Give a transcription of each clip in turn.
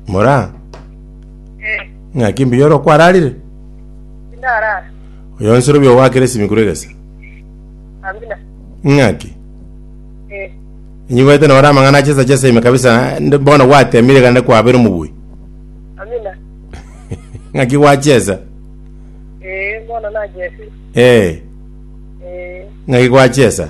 Mora, Eh, ng'aki mbuya ore okwararire? indarara. Oyo nsoro bi ogwakera esimikuru egesa. Amina. Ng'aki? Eh, Nyigwete nore amang'ana achesa chesa ime kabisa nde- bono gwatemire gande kwabera omobui. amina. Ng'aki gwachesa? Eh, bono nachesi. Eh, Eh, ng'aki gwachesa?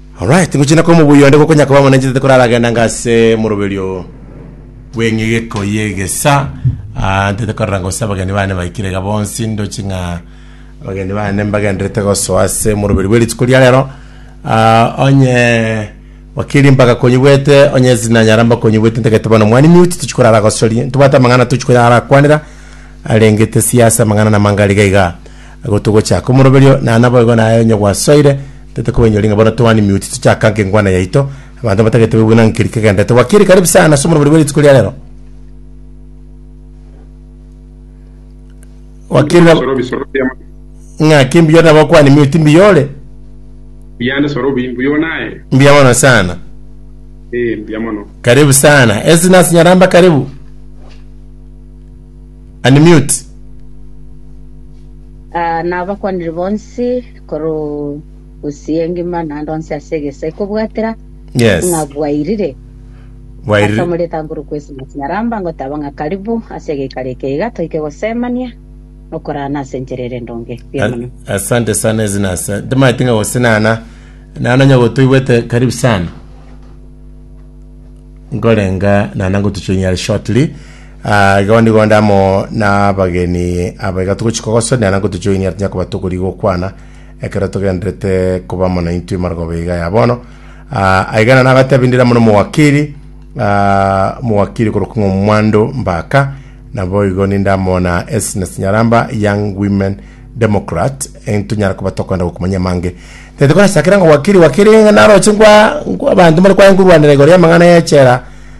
Alright, ngochina kwa omobuya onde gokonya koba omonenchete koraragenda anga ase moroberio bw'eng'egeko y'egesa Ah, ntete korora gose abageni bane baikire iga bonsi ndochi ng'a abageni bane mbagenderete gosoa ase moroberio bwe rituko ria rero Ah, onye wakiri mbagakonyigwete onye sinanyara mbakonyigwete ntagete bono mwane mute tochi korara gosoria ntobwate amang'ana tochi koyara kwanera arenge tesia ase amang'ana na mangariga iga Gotogocha komoroberio, na naboigo naye onye gwasoire, tete kobainyoria ng'a bono Toani Mute tochaka nka engwana yaito, abanto abatagete baigwe ng'a nkeri kegenderete. Gwakeri karibu sana ase omoroberio bwa rituko ria rero. Gwakeri na Bisoro bisoro biama ng'a ki mbiyo nabo kwani Mute mbiyo ore? biane soro bi mbuyo naye. Mbiya mono sana. Eh, mbuya mono. Karibu sana. Esi nasinyaramba karibu. Unmute. Ah, nabakwanire bonsi korwa usi engima naende onsi ase egeso ekobwatera Yes. ng'a bwairire ase Bwairire. omoretango ore kwesima nyaramba ngoteba ng'a karibu ase egeikaro eke iga toike gosemania nokorana ase enchera ere endonge buya mono A- Asante sana ezinasa. Ndimati nga gosinana. Nana nyago toigwete karibu sana. Ngorenga nana ngotuchunyara shortly. Aa, igo nigo onde amo nabageni aba iga togochi kogosonera na nkotochoinia tinya koba tokori gokwana ekero togenderete koba amo naintwe marogoba iga ya bono. Aa, aigana nagatebi ndire amo nomowakiri, aa, omowakiri korokwa ng'a Omwando Mbaka, nabo igo ninde amo na Esnes Nyaramba, Young Women Democrat, entonyare koba tokoenda gokumanyia amange. Tete korasakera ng'a wakiri, wakiri ng'a naroche ngwa, ngwa abanto mbare kwaye nkorwanera igoro y'amang'ana y'echela,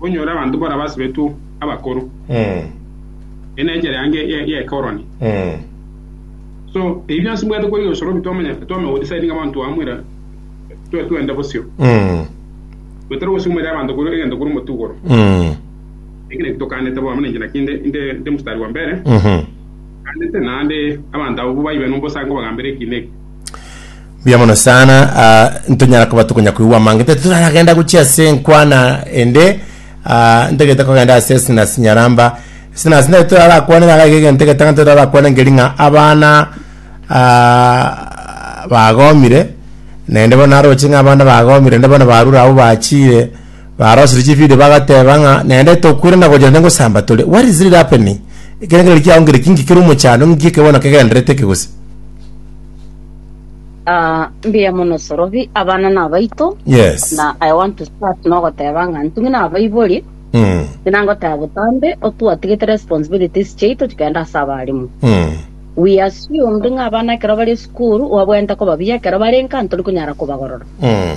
Onyore abanto baria basibetwe abakoro, eye nenchera yange y'ekoroni. So ebi bionsi mbwate korigia gose robi twamanya twamanya go decide ng'abanto aba mwira twe twende bosio gotari gosumera abanto kore egento kore omotugoro eki naki tokanete bono ninche naki inde inde inde mstari wa mbere kanete naende abanto abo baibe nombosango bagambere eki neki Mbuya mono sana ah, ntonyara koba tokonya koigwa amange tari toraragenda gochia ase enkwana ende ah, ntagete kogenda ase sinas nyaramba sinas nere torarakwanera gaiga egento egetang'ani torarakwana nkeri ng'a abana ah, bagomire naende bono naroche ng'a abana bagomire naende bono barure abwo bachire barosire chivideo bagateba ng'a naende tokwirana gochia naende ngosamba tore what is really happening ekero kere kiago nkere kinki kere omochando ng'iki eke bono kegenderete eke gose Ah, mbuya mono Sorobi, abana nabaito. Yes. Na I want to start nogoteba ng'a ntung'ina abaibori, Mm. buna ngoteba botambe, otwatigete responsibilities chiaito chikenda ase abarimu. Mm. We assumed ng'a abana ekero bari esukuru, obabwenerete koba buya, ekero barenka ntori konyara kobagorora. Mm.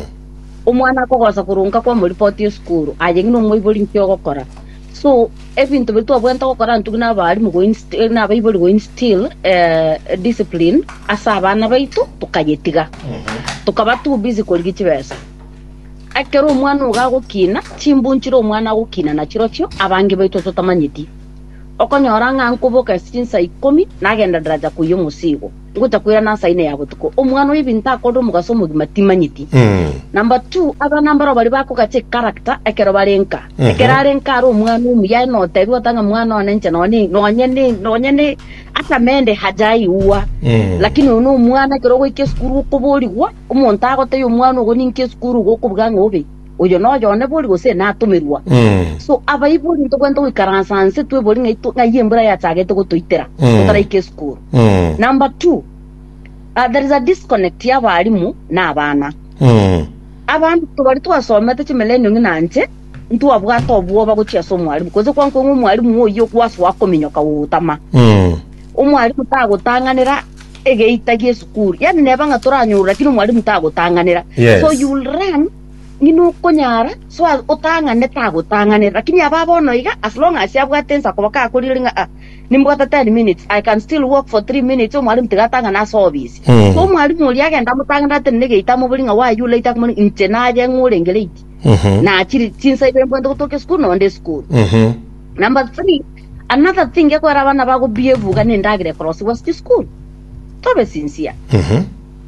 Omwana akogosa korwa nka kwamoripoti esukuru, aye ng'ina omoibori nki ogokora? So ebinto biri twabwenerete gokora ntwe nabalimu koin- eh, nabaibori koinstill eh, discipline ase abana baito tokayetiga tokaba too busy korigia chibesa ekero omwana ogo agokina chimbunchire omwana agokina nachirochio abange baito totamanyeti okonyora ng'a nkoboka ase chinsa ikomi nagenda daraja koyia omosigo Gotakoirana ase aina ya botuko, omwana o ebinto akorire omogaso omogima timanyeti. Number two, abana mbaro baria bakogacha echaracter ekero bare nka. Ekero are nka are omwana omuya aye notebi gose ng'a mwana one inche nonye ne- nonye ne- nonye ne ata mende haja aigwa. Lakini oyo nomwana ekero ogoika esukuru okoborigwa, omonto agotebi omwana ogo ninka esukuru igo okobuga ng'a obe. oyo noyo one bori gose natomerwa. So abaibori ntogwenta goikaransa nse twebori ng'ai to- ng'ai embura yachagete gotoitera totaraika esukuru. Number two, ah, there is a disconnect y'abarimu na abana. Abanto baria twasomete chimerenio ng'ina nche ntwabwate obwoba gochia ase omwarimu gose kwankwa ng'a omwarimu oyio gwasoa kominyoka gogotama omwarimu tagotang'anera egeita gi'esukuru yaani neba ng'a toranyore lakini omwalimu tagotang'anera Yes. so you will run ng'ina okonyara so as otang'ane tagotang'anera lakini aba bono iga as long as abwate ensa koba kakorire ng'a ah, nimbwate 10 minutes i can still walk for 3 minutes omwalimu tiga atang'ane ase obisi Mm. so omwalimu oria agenda amotang'anera tene negeita amobori ng'a why you late akomori inche naye ng'a orenge late Mhm. nachiri chinsa ibe mbwate gotoka esukuru nonde esukuru Mhm. Number three, Another thing ekogera abana bago buya ebuga na endagera ekorosigwa ase chisukuru. Tobe sincere.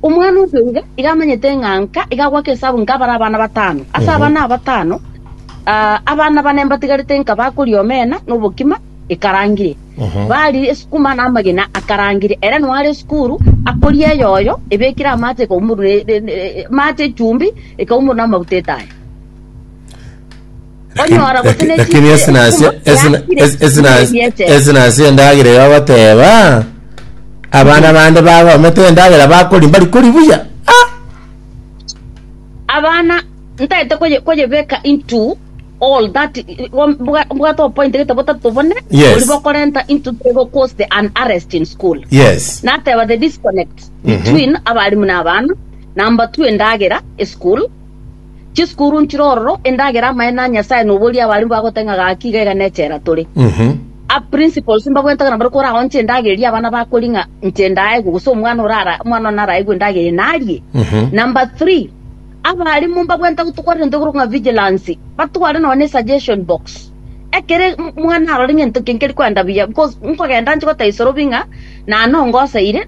Omwana obe iga, iga amanyete ng'a nka, iga agoaka esabu nka bare abana batano. Ase abana aba batano, ah, abana bane mbatigarete nka bakoria omena na obokima ekarangire. Bari esukuma na amagena akarangire. Ere noare esukuru, akoria eyoyo, ebekire amache ekaumorwa ne- ne- ne- amache echumbi, ekaumorwa na amaguta etaya. Lakini- Onyora gose laki- ne lakini chinguru esinasi- ekumba esina- yakire, es- esina- ebiete. esinasi endagera eyo agoteba abana bande bagomete endagera bakori mbari kori buya Ah! abana ntaete koye- koyebeka into all that bwate obopoint gete botato bone Yes. ori bokorenta into tego cause the an arrest in school yes nateba the disconnect between abarimu na abana number two endagera eschool Chisukuru nchire ororo, endagera amaene a Nyasae na oboria abare mbagoteba ng'a gaki iga iga nechela tore. A principals mbagwentagera nabare koraonche endagera eria abana bakori ng'a inche ndaegwe gose omwana orara omwana one araegwe endagera eye narie. Number three, abaalimu mbagwenta gotokwanera egento ekorokwa ng'a vigilance, batware nonya ne suggestion box. Ekero omwana arore ng'a egento eke nkeri koenda buya because nkogenda nche goteba isorobi ng'a nane ongoseire,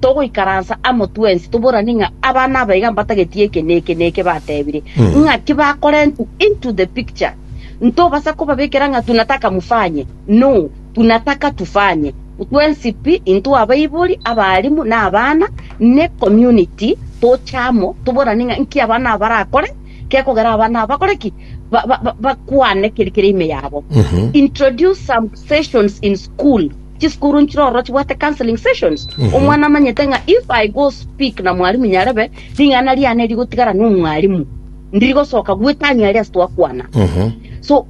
togoikaransa amo twensi toboranie ng'a abana aba iga mbatageti eke na eke na eke batebire, ng'aki bakorentwe into the picture. Ntobasa kobabekera ng'a tunataka mufanye, no, tunataka tufanye. Twensi pi, intwe abaibori, abaalimu, na abana, ne community, toche amo toboranie ng'a nki abana aba barakore gekogera abana aba bakore ki? Ba- ba- ba- bakwane keri kere ime yabo. Introduce some sessions in school Chisukuru nchire ororo chibwate counseling sessions omwana amanyete ng'a if i go speak na mwalimu nyarebe ring'ana riane rigotigara n'omwalimu ndiri gosoka gwetania aria ase twakwana so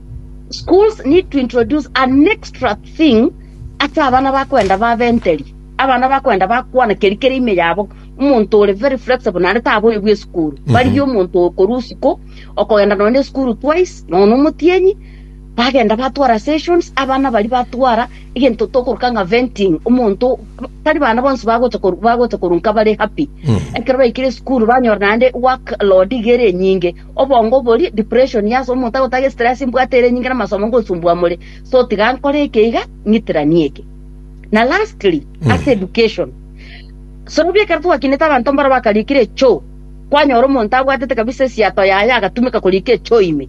schools need to introduce an extra thing ase abana bakwenda babenteri abana bakwenda bakwana keri kere ime yabo omonto ore very flexible naende taboigwa esukuru barigie omonto okorusia ko okogenda nonye esukuru twice nonya omotienyi Bagenda batwara sessions, abana baria batwara egento tokoroka ng'a venting, omonto tari bana bonsi bagocha koru- bagocha korunka bare happy. Ekero baikire esukuru banyora naende work load iga ere enyinge, obongo boria, depression, yes, omonto agotaga estress mbwate ere enyinge na amasomo ngosumbwa more, so tiga nkore eke iga, ng'itiranie eke. Na lastly, ase education, sorobia ekero twakinete abanto mbaro bakariikire echoo, kwanyora omonto abwatete kabisa esiato yaye agatumeka koriika echoo ime.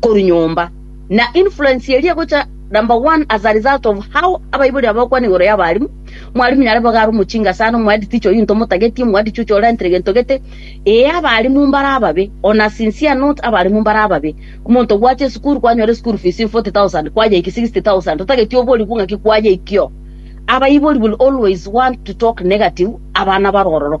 korwa nyomba, na influence eria egocha number one as a result of how abaibori aba bakwana igoro y'abarimu, mwarimu nyare bobe are omochinga ase are omwendi teacher oyio into omotageti, omwendi chuchu orentire gento gete, ee abarimu mbare ababe, on a sincere note abarimu mbare ababe, omonto gwacha esukuru kwanyora eschool fees in forty thousand kwayeiki sixty thousand otageti oborigwe ng'aki kwayeikio, abaibori will always want to talk negative abana bare ororo.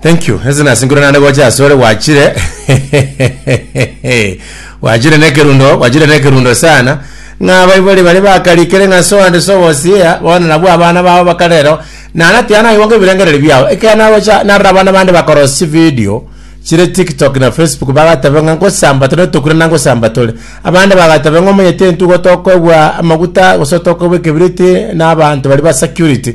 Thank you. Ese nasingure naende gocha asore gwachire. gwachire nekerundo, gwachire nekerundo sana. Ng'a baibori bari bakarikere ng'a so and so was here, bono nabwo abana babo bakarero. Nana tiana igo ngebirengereri biao. Ekero nagocha narora abana bande bakorosi video chire TikTok na Facebook bagatebe ng'a ngosamba tore tokure na ngosamba tore. Abande bagatebe ng'a omanyete entugo tokoegwa amaguta gose tokoegwa ekebiriti na abanto bari ba security.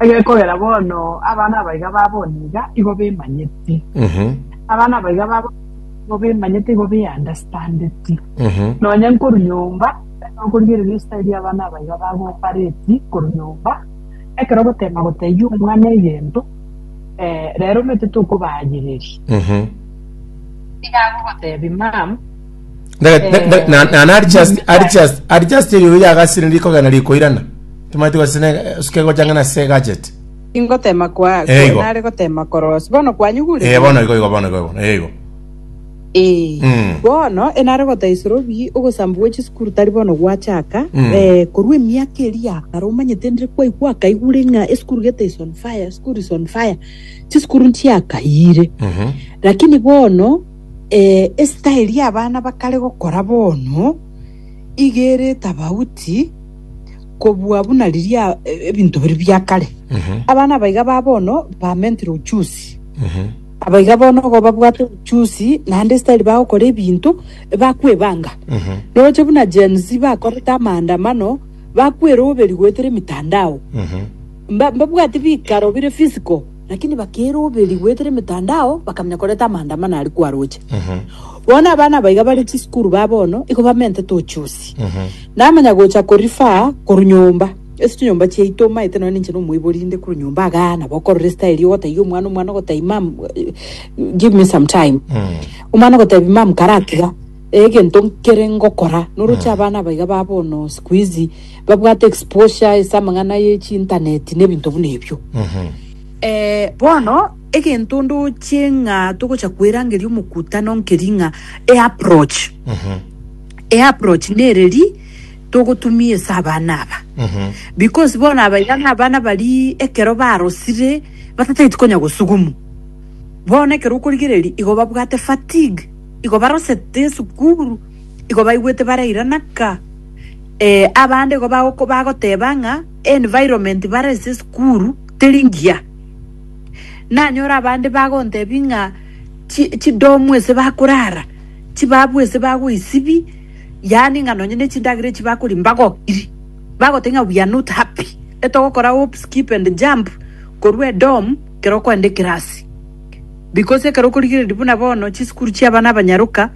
Egekogera bono abana abaiga ba bono iga igo bemanyeti, abana abaiga ba bono igo bemanyeti igo beandastandeti. Nonya nkorwa nyomba tari nokorigereria ostairi abana abaiga bagopareti korwa nyomba, ekero ogoteema gotebia omwana egento, rero omanyete tokobayereria. Nigo agogoteebia, Mum, Eh. nana ari just ari just ari just eyo yagasire rikogena rikoirana timanyete gosina suke gochangana se gadget ingotema kwa Eh, igo. nare gotema korosi bono kwanyugure eh bono igo igo bono igo bono eh igo Eh, Mm. bono enare gotaisora obi ogosambu gwe chisukuru tari bono gwachaka Mm. eh, korwa emiaka eria kare omanyete ndire kwaigwa akaigure ng'a esukuru gete is on fire esukuru is on fire chisukuru nchiakayire Mhm. lakini bono Ee, esitaeli y'abana bakare gokora bono iga ere etafauti kobua buna riria ebinto biria bia kare. Abana abaiga ba bono bamentire uchusi. Abaiga bono igo babwate uchusi naende esitaeli bagokora ebinto bakwebanga. Roche buna Gen Z bakorete amaandamano, bakweroberi goetera emitandao. Mba- mbabwati bikaro bire physical. Naki nibakeire oberi goetera emetandao, bakamenya koreta amaandamano aria kwaroche. Bono abana abaiga bare chisukuru ba bono igo bamentete ochusi. Namanya gocha ko-refer korwa nyomba. Ase chinyomba chiaito omaete nonya ninche nomoibori inde korwa nyomba igaa nabo okorora estyle ogotaiya omwana, omwana ogotai mum, give me some time. Omwana ogotebi mum karatiga egento nkere ngokora. Noroche abana abaiga ba bono sikuizi. Babwate exposure ase amang'ana ye chintaneti na ebinto buna ebio. Eh, bono egento ndoche ng'a togocha koerangeria omokutano nkeri ng'a eapproach eapproach nereri togotumia ase abana aba because bono abaiga nabana baria ekero barosire batatageti konya gosugumu bono ekero okorigereria igo babwate fatigue igo barosete esukuru igo baigwete barairanaka Ee, abande igo bagoko- bagoteba ng'a environment bare ase esukuru teri ngiya. Nanyore abande bagontebi ng'a chi- chidomu ase bakorara, chibabu ase bagoisibi, yaani ng'a nonye na echindagera echi bakoria mbagokiri. Bagoteba ng'a we are not happy, etogokora hop, skip and jump korwa edomu kero okoenda ekerasi. Because ekero okorigereria buna bono chisukuru chia abana abanyaroka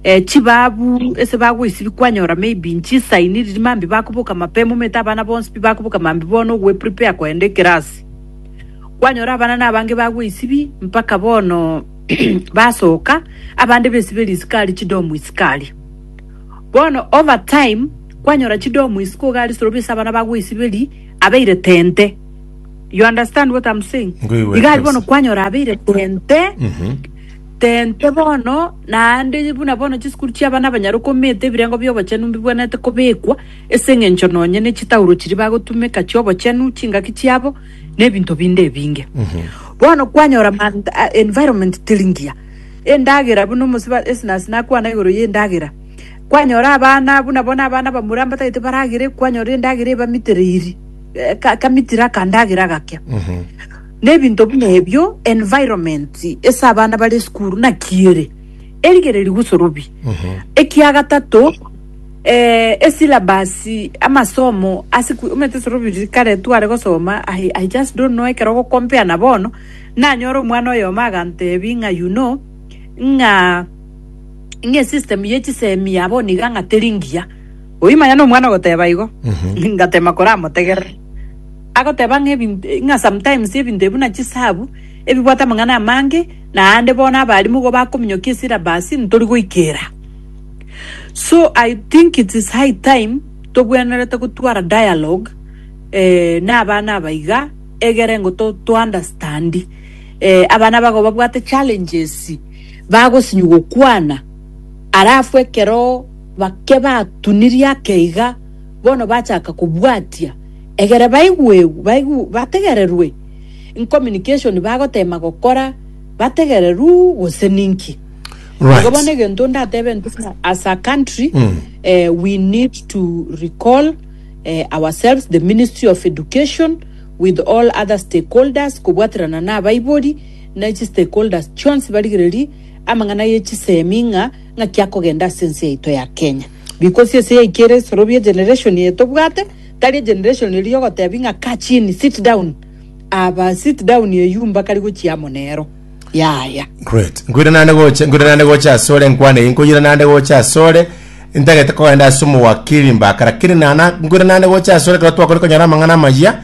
eh, chibabu ase bagoisibi kwanyora maybe nchisaini riria mambi bakoboka mapema omanyete abana bonsi pi bakoboka mambi bono ogweprepare kogenda ekerasi kwanyora abana nabange bagoisibi mpaka bono basoka abande baisibe risiko aria chidomu isiko aria bono over time kwanyora chidomu isiko iga aria sorobi ase abana bagoisiberia abeire tente You understand what I'm saying? Ngoigwete Iga ari bono kabisa. kwanyora abeire tente Mhm. tente bono naende buna bono chisukuru chi'abana abanyaruka omete ebirengo bi'obochenu mbibwenerete kobekwa ase eng'encho nonye ne chitauro chiria bagotumeka chi'obochenu chingaki chiabo na ebinto binde ebinge bono kwanyora man- a- environment teri ngiya endagera buna omosiba esinasi nakwana igoro y'endagera kwanyora abana buna bono abana bamura mbatagete baragere kwanyora endagera ebamitereiri eh, ka- kamitire akandagera agakea na ebinto buna ebio environment ase abana bare esukuru naki ere erigere rigusorobi ekia gatato eh, esilabasi amasomo ase ku- omanyete sorobiri kare tware gosoma I, i just don't know ekero ogokompea na bono nanyora omwana oyomo agantebi ng'a you know ng'a ng'esystem ye chisemi ya bono iga ng'a teri ngiya Oyio manya nomwana ogoteba igo, ngatema koramotegerera. Agoteba ng'a ebinto ng'a sometimes ebinto ebi buna chisabu, ebibwate amang'ana amange, naende bono abalimu igo bakominyokia esyllabus ntori goikera. So I think it is high time tobwenerete gotwara dialogue na abana aba iga, egere ngo to to understand abana aba igo babwate challenges, bagosinywa gokwana, alafu ekero. Baria batunirie ake iga bono bachaka kobwatia, egere baigwegwe, bategererwe incommunication bagotema gokora bategererwe gose ninki. Right. Igo bono egento ndatebe nti buna as a country mm. uh, we need to recall uh, ourselves the ministry of education with all other stakeholders kobwaterana na abaibori na echi stakeholders chionsi barigereri amang'ana ye chisemi ng'a Ng'aki akogenda ase ense yaito ya Kenya. Bikosi ase yaikio ere esorobio egeneration eye tobwate tari egeneration eria ogotebi ng'a kaa chini sit down aba sit down eyio mbakari gochia amo nero yaya. Great. Nkoiranane gocha, nkoiranane gocha ase ore enkwana eye, nkoiranane gocha ase ore, ntagete kogenda ase omowakiri mbaka, lakini nana, nkoiranane gocha ase ore ekero twakore konyora amang'ana amaya,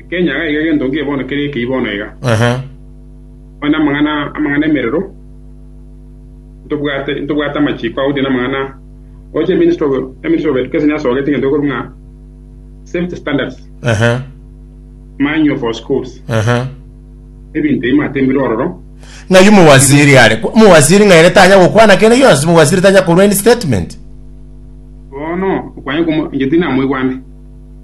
Ekenya iga iga gento nkie bono kere ekeyia bono iga. Onye namang'ana amang'ana emerero, ntobwate ntobwate amachiko agotiga namang'ana oche ministry of ministry of education yasogete egento ekorwa ng'a safety standards manual for schools ebinto ebi matembire ororo ng'ayu mowaziri are mowaziri ng'aere tanya gokwana kende gionsi mowaziri tanya korwa any statement bono okwanye komo inche tinamoigwande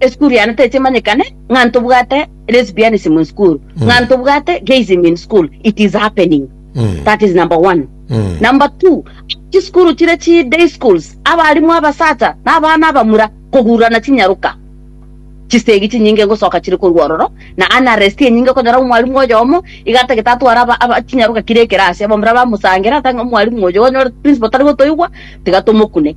Esukuru yane techimanyekane ng'a ntobwate lesbianism in school ng'a ntobwate gayism in school it is happening that is number one number two chisukuru chire chi day schools abalimu abasacha na abana abamura kogurana chinyaruka chisegi chinyinge ngosoka chire korwa ororo na unrest enyinge okonyora omwalimu oyomo iga atagete atware aba- aba- chinyaruka kire ekerasi abamura bamosangera ata ng'a omwalimu oyo onyore principal tari gotoigwa tiga tomokune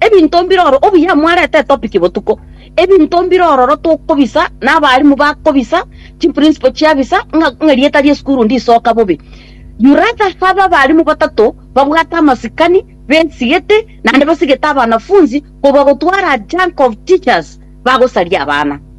Ebinto mbiroro obuya mwarete etopic botuko. Ebinto mbire ororo tokobisa na abalimu bakobisa chiprinciple chiabisa ng'a ng'a rieta riesukuru ndisoka bobe. You rather have abalimu batato babwate amasikani besigete naende basigete abanafunzi kobua gotwara a junk of teachers bagosaria abana.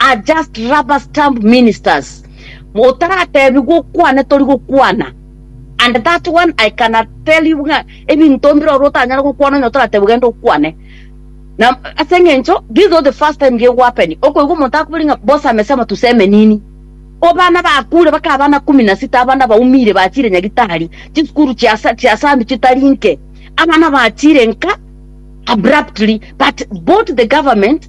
are just rubber stamp ministers. Motaratebi gokwana tori gokwana. And that one I can tell you nga ebinto mbire oro otanyare gokwana onye toratebi genda okwane. Na ase eng'encho this is not the first time gego happen. Okoigwa omonto akubiri nga boss amesema tuseme nini. Obana bakure baka abana kumi na sita abana baumire bachire nyagitari chisukuru chiasa chiasambi chitari nke abana bachire nka abruptly but both the government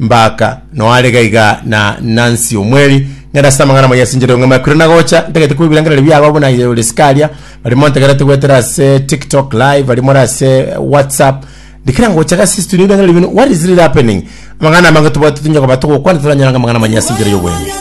Mbaka, noare iga iga na Nancy omweri, ngende ase amang'ana amayia ase enchera y'ong'aima ekwire nagocha, ntagete koigwa ebirengererio biago abwo buna Yoweri Scallion, barimo ntagerete goetera ase TikTok live, barimo ore ase WhatsApp, ndikira ngocha iga ase studio ebirengererio bino, what is really happening? Amang'ana amange tobwate tonya koba togokwana toranyora ng'a amang'ana amanyaa ase enchera y'obwenene.